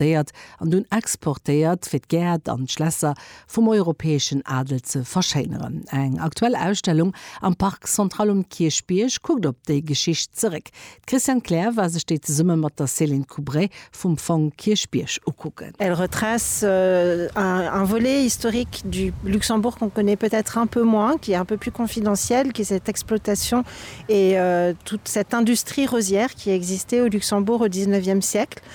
importéiert an dunn exportéiert, fir d'Gäert an d'Schlässer vum europäeschen Adel ze verschéineren. Eng aktuell Ausstellung am Parc Central um Kierchbierg kuckt op déi Geschicht zeréck. D'Christiane Kleer war sech déi zesumme mat der Céline Coubray vum Fong Kierchbierg ukucken. Elle retrace un volet historique du Luxembourg qu'on connaît peut-être un peu moins, qui est un peu plus confidentiel, qui est cette exploitation et toute cette industrie rosière qui a existé au Luxembourg au dix-neuvième siècle.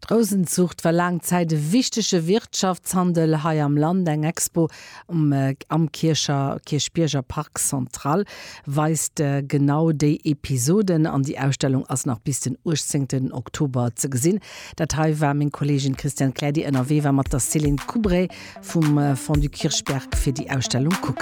D'Rousenzuucht war laang Zäit e wichtege Wirtschaftshandel hei am Land. Eng Expo am Kiercher Kierchbierger Parc Central weist genau déi Episoden an déi Ausstellung ass nach bis den 18 Oktober ze gesinn. Dat hei war meng Kolleegin Christiane Kleer, déi ënnerwee war mat der Céline Coubray vum Fonds du Kirchberg fir déi Ausstellung kucken